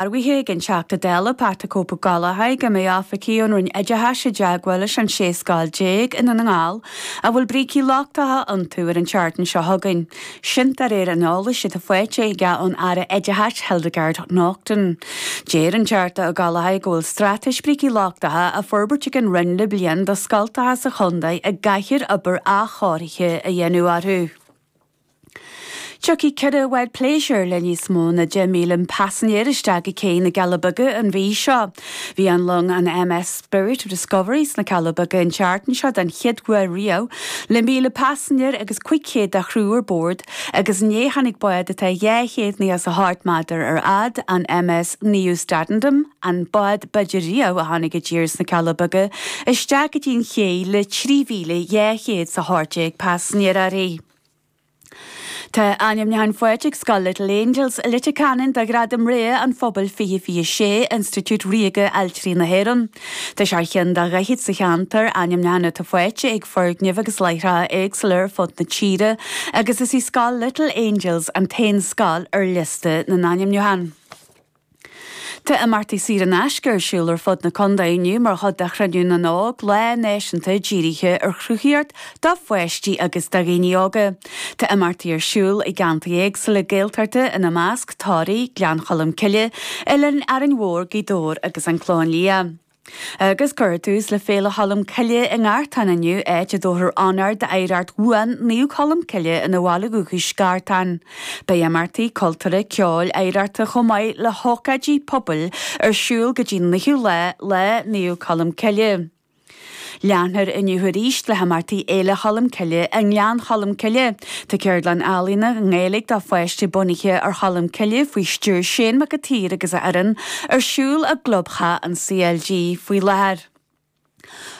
Dearbhaithe ag an Teachta Dála Pat 'The Cope' Ó Gallchóir go mbeidh oifigigh ón Roinn Oideachais i dteagmháil leis an 16 scoil i nDún na nGall a bhfuil brící lochtacha iontu ar an tseachtain seo chugainn sin de réir an eolais atá faighte aige ón Aire Oideachais Hildegarde Naughton. Deir an Teachta Ó Gallchóir go bhfuil straitéis brící lochtacha á forbairt ag an Roinn le bliain do scoltacha sa chontae a gcaithfear obair athchóirithe a dhéanamh orthu. Tiocfaidh ceithre bhád pléisiúir le níos mó na 10,000 paisinéir isteach go cé na gCealla Beaga an mhí seo. Bhí an long an MS Spirit of Discovery sna Cealla Beaga an tseachtain seo den chéad uair riamh, le 1,000 paisinéir agus 500 de chriú ar bord, agus inné tháinig bád atá 298 méadar ar fhad, an MS Nieuw Statendam, an bád b'fhaide riamh a tháinig i dtír sna Cealla Beaga, isteach go dtí an ché le 3,218 paisinéir uirthi. Tá ainmniúchán faighte ag Scoil Little Angels i Leitir Ceanainn do Ghradam Rogha an Phobail 2026 Institiúid Ríoga Ailtirí na hÉireann. Tá sé ar cheann de dhaichead is a ceathair ainmniúchán atá faighte ag foirgnimh agus láithreacha éagsúla ar fud na tíre agus is í Scoil Little Angels an t-aon scoil ar liosta na n-ainmniúchán. Tá imeachtaí saor in aisce ar siúl ar fud na condae inniu mar chuid de Chruinniú na nÓg, lá náisiúnta dírithe ar chruthaíocht do pháistí agus do dhaoine óga. Tá imeachtaí ar siúl i gceantair éagsúla Gaeltachta ina measc, Toraigh, Gleann Cholm Cille, Oileán Árainn Mhór, Gaoth Dobhair agus An Clochán Liath. Agus cuirfear tús le Féile Cholm Cille i nGartán inniu, áit a dtabharfar onóir d'oidhreacht bhuan Naomh Colm Cille ina bhaile dhúchais, Gartán. Beidh imeachtaí cultúrtha, ceoil, oidhreachta chomh maith le hócáidí pobail ar siúl go dtí an naoú lá, Lá Naomh Colm Cille. Leanfar inniu arís le himeachtaí Fhéile Cholm Cille i nGleann Cholm Cille. Tá ceardlann ealaíne i nGaeilge do pháistí bunaithe ar Cholm Cille faoi stiúir Seán Mac an tSaoir agus a fhoireann, ar siúl i gClubtheach an CLG faoi láthair.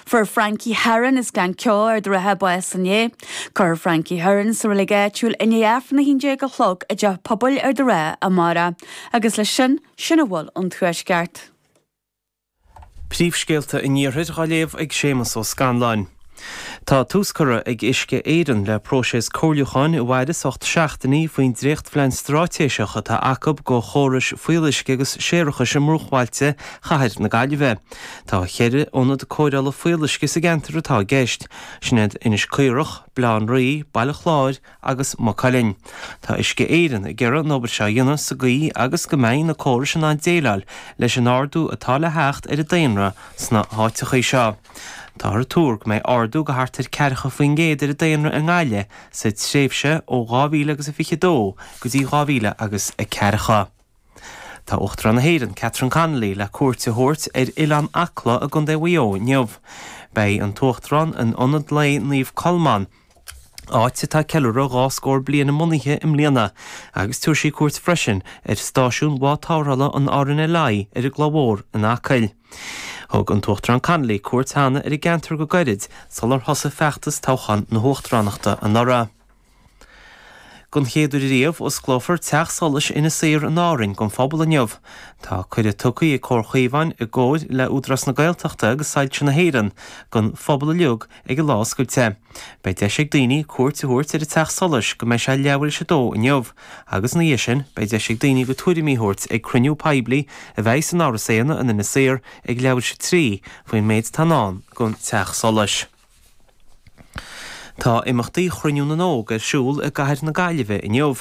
Fuair Frankie Herron as Gleann Ceo Ard an Rátha bás inné. Cuirfear Frankie Herron sa reilig áitiúil i ndiaidh Aifreann 11 a chlog i dTeach Pobail Ard an Rátha amárach. Agus leis sin, sin a bhfuil ón Tuaisceart. Príomhscéalta an Iarthair á léamh ag Séamus Ó Scanláin. Tá tús curtha ag Uisce Éireann le próiseas comhairliúcháin a mhairfeas ocht seachtainí faoin dréachtphlean straitéiseach atá acu do chórais fuíolluisce agus séarachais i mbruachbhailte chathair na Gaillimhe. Tá ceithre ionad cóireála fuíolluisce sa gceantar atá i gceist, sin iad Inis Caorach, Baile Átha an Rí, Baile Chláir, agus Maigh Cuilinn. Tá Uisce Éireann ag iarraidh an obair seo a dhéanamh sa gcaoi agus go mbeidh na córais in ann déileáil leis an ardú atá le theacht ar an daonra sna háiteachaí seo. Táthar ag tuar go mbeidh ardú go thart ar ceathracha faoin gcéad ar an daonra i nGaillimh sa tréimhse ó dhá mhíle agus a fiche dó go dtí dhá mhíle agus a ceathracha. Tá Uachtarán na hÉireann, Catherine Connolly le cuairt a thabhairt ar Oileán Acla i gContae Mhaigh Eo inniu. Beidh an tUachtarán in Ionad Lae Naomh Colmán, áit atá ceiliúradh dhá scór bliain a mbunaithe i mbliana, agus tabharfaidh sí cuairt freisin ar Stáisiún Bhád Tarrthála an RNLI ar an gCloich Mhór in Acaill. Thug an tUachtarán Connolly cuairt cheana ar an gceantar go gairid sular thosaigh feachtas toghchán na hUachtaránachta anuraidh. Don chéad uair riamh, osclófar teach solais Inis Oírr in Árainn don phobal inniu. Tá cuireadh tugtha ag Comhar Chaomháin, i gcomhair le Údarás na Gaeltachta agus Soilse na hÉireann, don phobal uilig ag an Lá Oscailte. Beidh deis ag daoine cuairt a thabhairt ar an teach solais go mbeidh sé leathuair tar éis a dó inniu, agus ina dhiaidh sin beidh deis ag daoine a gcuid tuairimí a thabhairt ag cruinniú poiblí a bheidh san Áras Éanna in Inis Oírr ag leathuair tar éis a trí faoin méid atá in ndán don teach solais. Tá imeachtaí Chruinniú na nÓg ar siúl i gCathair na Gaillimhe inniu.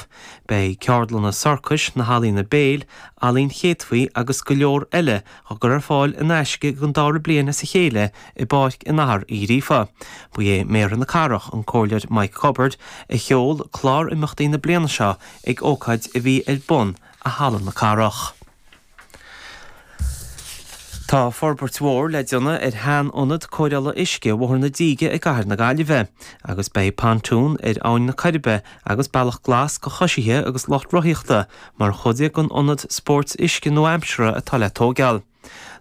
Beidh ceardlanna sorcais, na healaíona béil, ealaín chéadfaí agus go leor eile á gcur ar fáil in aisce don dara bliain as a chéile i bPáirc an Athar Uí Ghríofa. Ba é Méara na Cathrach, an Comhairleoir Mike Cubbard, a sheol clár imeachtaí na bliana seo ag ócáid a bhí ar bun i Halla na Cathrach. Tá forbairt mhór le déanamh ar shean-ionad cóireála uisce Bhóthar na Díge i gCathair na Gaillimhe, agus beidh Pontoon ar Abhainn na Coiribe agus Bealach Glas do choisithe agus lucht rothaíochta mar chuid den ionad spóirt uisce nua-aimseartha atá le tógáil.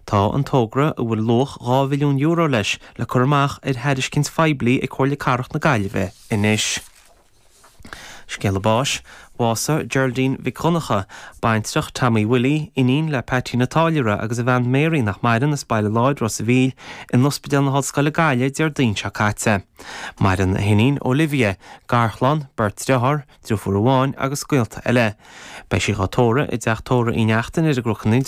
Tá an togra, a bhfuil luach €2 mhilliún leis, le cur amach ar thairiscint phoiblí ag Comhairle Cathrach na Gaillimhe anois. Scéala báis, Bhásaigh Geraldine Mhic Dhonncha, baintreach Tommy Willie, iníon le Peaití an Táilliúra agus a bhean Mary nach maireann as Baile Láir Ros a' Mhíl in Ospidéal na hOllscoile Gaillimh Déardaoin seo caite. Maireann a hiníon Olivia, garchlann, beirt deartháir, driofúr amháin agus gaolta eile. Beidh sí dhá tórramh i dteach tórraimh Uí Neachtain ar an gCnoc i